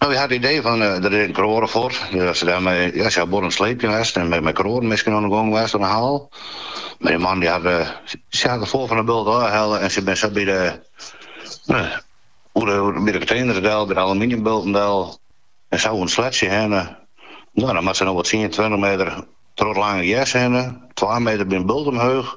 No, wy ha it idee fan, der is ek in kroade fuort, as se dêr mei, as se ha buorren sleepje west en mei kroaden miskien oan 'e gong west oan 'e haal. Mar dy man, dy hat, sy ha it foar fan 'e bult ôfhelle en sy binne sa by de, oer de, by de konteners del, by de aluminiumbulten del en sa oan it sleatsje hinne. No, dan moatte se no wol tsien, tweintich meter troch it lange gers hinne, twa meter by in bult omheech.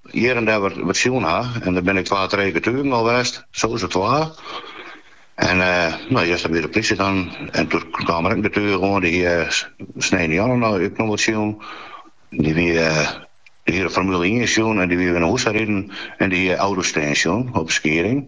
Hjir en dêr wat sjoen ha, en dêr binne ek twa, trije getugen al west, sowieso twa. En no juster wie de plysje dan, en doe kaam der ek in getuge oan, dy hie sneontejûn no ek noch wat sjoen. Dy wie, dy hie de Formule ien sjoen en dy wie wer nei hûs riden en dy hie auto's stean sjoen op de Skieding.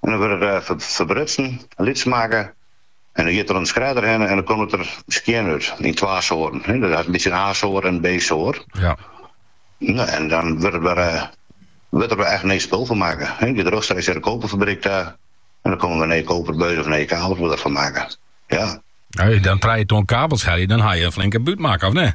En dan wurdt it ferbrutsen, lyts makke en dan giet er oan de shredder hinne en dan komt it der skjin út yn twa soarten. Dat is in bytsje in A-soart en in B-soart. Ja. Nou, en dan wurdt der wer, wurdt der wer echt nij spul fan makke. Dan giet er rjochtstreeks nei de koperfabryk ta en dan komme wer nije koperbuizen of nije kabels wurdt derfan makke. Ja. As je dan trije ton kabels helje, dan ha je in flinke bút makke, of net?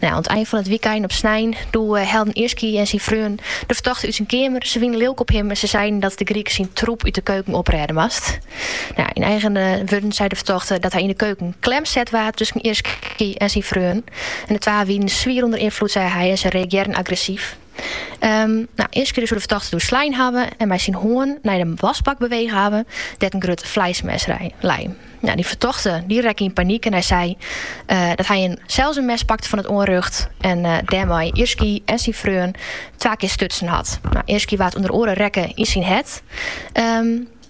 No, oan it ein fan it wykein op snein doe hellen Irsky en syn freon de fertochte út syn keamer. Se wiene lilk op him en se seinen dat de Griek syn troep út de keuken oprêde moast. Yn eigen wurden sei de fertochte dat hy yn de keuken klem set waard tusken Irsky en syn freon. En de twa wienen swier ûnder ynfloed, sei hy, en se reagearren agressyf. Irsky soe de fertochte doe slein hawwe en mei syn hân nei de wasbak bewege hawwe, dêr't in grut fleismes lei. Nou, dy fertochte dy rekke yn panyk en hy sei dat hy sels in mes pakte fan it oanrjocht en dêrmei Irsky en syn freon twa kear stutsen hat. Nou, Irsky waard ûnder oare rekke yn syn hert.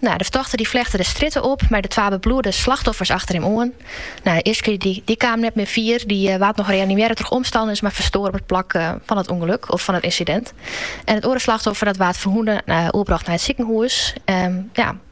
Nou, de fertochte dy flechte de strjitte op mei de twa bebloede slachtoffers achter him oan. Nou, Irsky dy dy kaam net mear fier, dy waard noch reanimearre troch omstanners, mar ferstoar op it plak fan it ûngeluk of fan it ynsidint. En it oare slachtoffer dat waard ferwûne oerbrocht nei it sikehûs. Ja,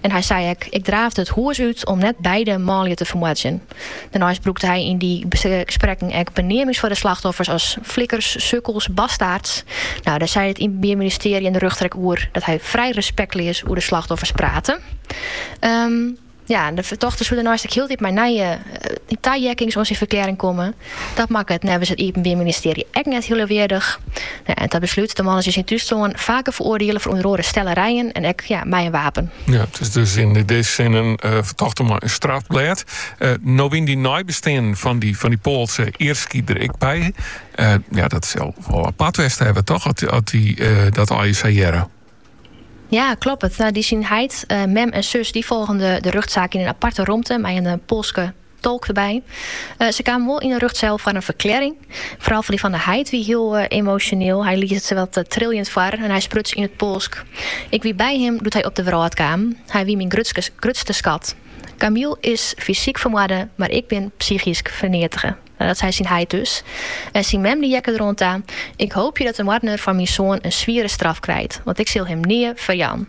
En hy sei ek, Ik draafde it hûs út om net beide manlju te fermoardzjen. Dêrneist brûkte hy yn dy gesprekken ek beneamings foar de slachtoffers as flikkers, sukkels, bastaards. No, dêr sei it Iepenbier Ministearje en de rjochter ek oer, dat hy frij respektleas oer de slachtoffers prate. Ja, de fertochte soe dêrneist ek hieltyd mei nije taheakkings oan syn ferklearring komme. Dat makke it neffens it Iepenbier Ministearje ek net hiel leauweardich. En ta beslút, de man is yn syn thúslân faker feroardiele foar ûnder oare stellerijen en ek mei in wapen. Ja, it is dus yn dizze sin in fertochte mei in strafblêd. No wiene dy neibesteanden fan dy Poalske Irski der ek by. Ja, dat sil wol apart west hawwe toch, as dy dat allegear sa hearre? Ja, kloppet. Dy syn heit, mem en sus, dy folgen de rjochtsaak yn in aparte romte mei in Poalske Tolk derby. Se kamen wol yn 'e rjochtseil foar in ferklearring. Foaral dy fan 'e heit wie hiel emosjoneel. Hy lies it sawat triljend foar en hy spruts yn it Poalsk. Ik wie by him doe't hy op de wrâld kaam. Hy wie myn grutste skat. Kamil is fysyk fermoarde, mar ik bin psychysk ferneatige. Dat sei syn heit dus. En syn mem die heakke der oan ta, Ik hoopje dat de moardener fan myn soan in swiere straf krijt, want ik sil him nea ferjaan.